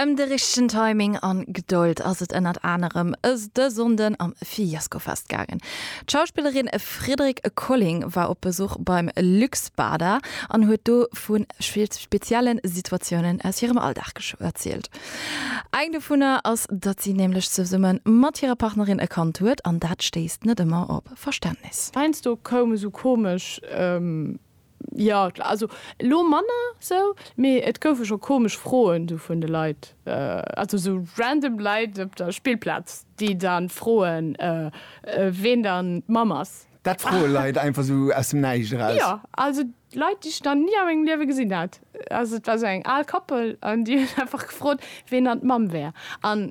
Ëm de richtegen Timing an Gedold ass et ënnert anerem de Sonnden am Fiescofest gaangen. D'Schauspillerin Fridrik Colling war op Besuch beim Luxbader an huet do vu spezielle Situatiounen aus hirem Alldag erzielt. Eng dovunner ass, datt si nämlech zesumme mat hirer Partnerin e Kand huet an dat stéisst net ëmmer op Verständnis. Heiansdo koum esou komesch Jo, klar, also elo manner sou, mee et goufe scho komesch Froen sou vun de Leit, also sou random Leit op der Spillplaz, déi dann froen, ween dann d'Mamm ass. Dat froe Leit einfach sou aus dem Näischt eraus? Jo, also Leit, déi ech nach ni a mengem Liewe gesinn hat. Also et war sou eng al Koppel an déi huet einfach gefrot, ween dann d'Mamm wär. An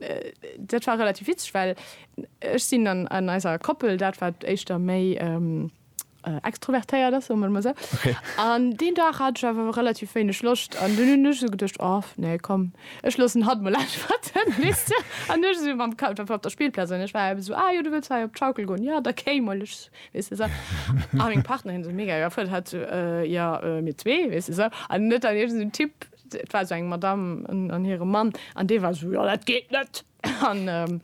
dat war relativ witzeg, well ech sinn an eiser Koppel dat, wat éischter méi, äh, extrovertéiert ass, soe mer emol esou. An deen Dag hat ech awer relativ wéineg Loscht an dunn hunn ech esou geduecht, oh nee komm, ech loossen hatt emol äntwerten, weess de. An du ech esou mam Ka einfach op der Spillplaz an ech war eben esou, ah jo, du wëlls hei op d'Schaukel goen, ja da kéi mol, ech weess de esou. A meng Partnerin esou mega iwwerfuerdert, hat esou, äh, jo, äh, mir zwee, weess de esou. An et war iergend esou en Typ, et war esou eng Madamm an hire Mann an dee war esou, jo dat geet net. An,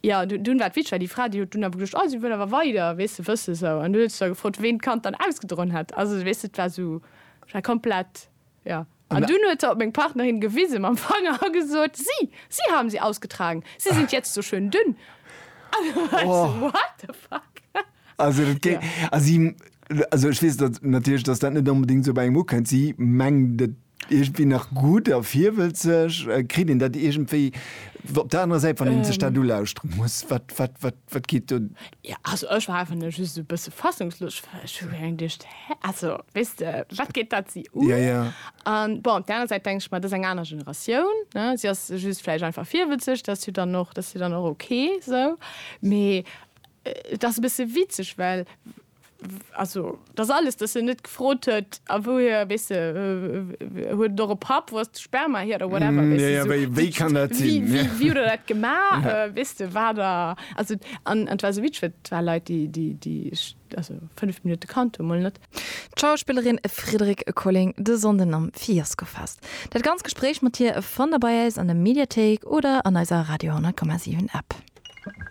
jo, dunn war d'Vitschra déi Fra, déi huet dunn awer geduecht, oh, si wëll awer weider, weess de, wësse sou. An dunn huet se gefrot, ween d'Kand dann ausgedroen hätt. Also, weess de, et war sou, et war komplett, jo. An dunn huet se op meng Partnerin gewise mam Fanger a gesot, Sie, Sie haben sie ausgetragen, Sie sind jetzt so schön dünn. An dunn war ech sou, what the fuck? Also, dat géing, also, si, also, ech weess dat natierlech, dass dat net onbedéngt sou bei engem ukënnt. Si mengt et Iergendwéi nach gutt a virwëlzeg. Kritt een dat iergendwéi op der anerer Säit, wann een sech dat ulauschtere muss? Wat, wat, wat, wat geet do? Jo, also ech war einfach nëmme just esou e bësse fassungslos, well ech hu reng duecht, Hä? Also, weess de, wat geet dat si un? Jo, jo. An bon, op der anerer Säit denke ech mer, dat ass eng aner Generatioun, ne? Si ass just vläicht einfach virwëlzeg, dat ass jo dann och, dat ass jo dann och ok esou. Mee et ass e bësse witzeg, well. Also, et ass alles, dass en net gefrot huet, a wouhier, weess de, huet et och e Papp, wou ass de Sperma hier oder whatever, weess de, sou, wéi kann dat sinn, wéi, wéi huet der dat gemaach, weess de, war der, also, an et war esou witzeg, well et war Leit, déi, déi, déi ech also fënnef Minutte kannt hunn, mol net. D'Schauspillerin Friederike Colling de Sonnden am Fiaskofest. Dat ganzt Gespréich mat hir fannt der bei äis an der Mediathéik oder an eiser Radio 10,7 App.